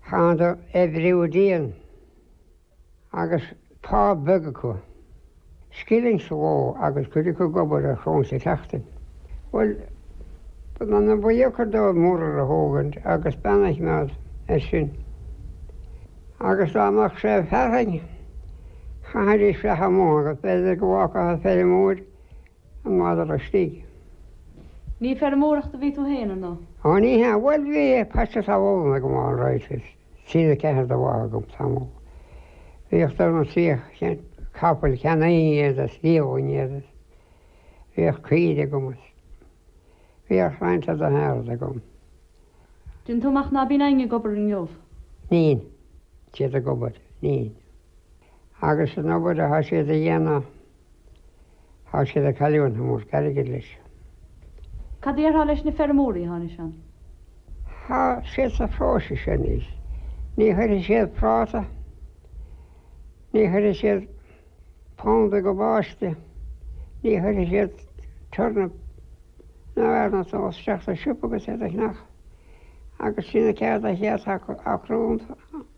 Tháinig oibriú dian agus pá beag acu, scilling sa ló agus cuid acu ag obair ar choróin sa tseachtain. Bhuel, b'ana-dheacair dóibh muirear a thógaint agus bean a choimeád air sin. Agus dá mbeadh sé ag fearthainn, chaithfidís fuireach amuigh agus b'fhéidir go bhfágfadh an feirmeoir, an madra istigh. Ní ag feirmeoireacht a bhí tú féin ar ndóigh? Ó ní hea, bhuel bhí paiste talún agam ann, an rud is trí nó ceathair de bha agam tamall. Bhíodh dó nó trí cinn de chapaill ceann aon chéad is fiadhúlra an chéad is bhíodh caoirigh agam is bhíodh roinnt eile de shearbhad agam. Déanann tú amach ná bíonn éinne ag obair inniu. Níl siad ag obair. Níl. Agus an obair atá siad a dhéanamh. Tá siad ag cailliúint an-mhórchuid airgid leis. Cad déarfá leis na feirmeoirí atá anois ann? Tá siad sa phróisis anois. Ní chuirfidh siad práta, ní chuirfidh siad planda cabáiste, ní chuirfidh siad turnip ná aon rud ach isteach sa siopa agus iad a cheannach. Agus sin an cheird atá acu, a chrúnta.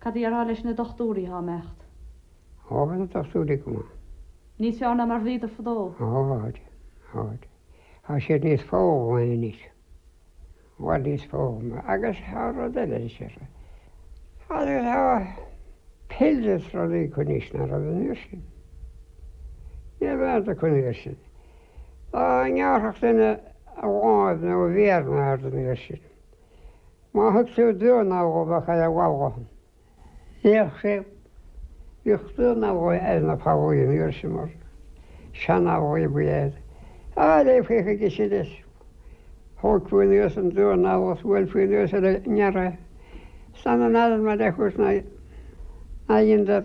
Cad déarfá leis na dochtúirí atá ag imeacht? Ó, tá na dochtúirí go maith. Níos fearr ná mar bhíodar fadó? Ó, táid, táid. Tá siad níos foghlamtha anois, i bhfad níos foghlamtha. Agus tá rud eile anois, ar sise. Agus tá pill is rudaí acu anois ná raibh an uair sin. Ní raibh aon rud acu an uair sin. Dá ngearrfadh duine a láimh nó a mhéar nó aon rud an uair sin. Má thug sé duán alla bheadh é a bhalghamh. Bhíodh sé, bhíodh duán alla ar na fallaí an uair sin mar sean-fhallaí a bhí air. Raghfaí chuige sin leis. Thógfaí anuas an duán alla is bhuailfí anuas ar an ngearradh. San an fhearr mar é a thabhairt ná, ná dheineadar.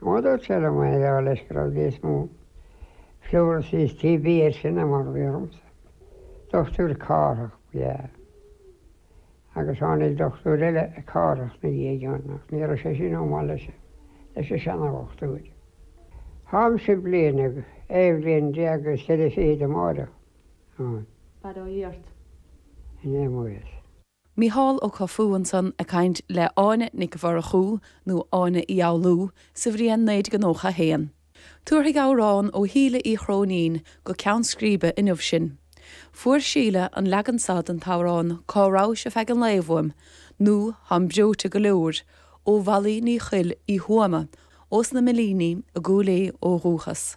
Má dúirt Ella May dar leis go raibh níos mó pleurisy is TB air sin ná mar a bhí ormsa. Dochtúir Cárthach ba ea é. Agus tháinig dochtúir eile Cárthach 'na dhiaidh, John, ach ní raibh sé sin chomh maith leis an seana-dhochtúir. Tháimse bliain déag, aon bhliain déag is ceithre fichid amárach. An. Fada ó dhiairt. An fhios. Mícheál Ó Cofaigh ansan ag caint le Áine Nic Mhurchú, nó Áine Uí Fhoghlú, sa bhliain 1991. Tabharfaidh amhrán ó Shíle Uí Chróinín go ceann scríbe inniu sinn. Fuair Síle an leagan seo den t-amhrán Cá rabhais ar feadh an lae uaim, nó Táim breoite go leor, ó Mhalaí Ní Choill Uí Thuama, ós na Milíní i gCúil Aodh ó dhúchas.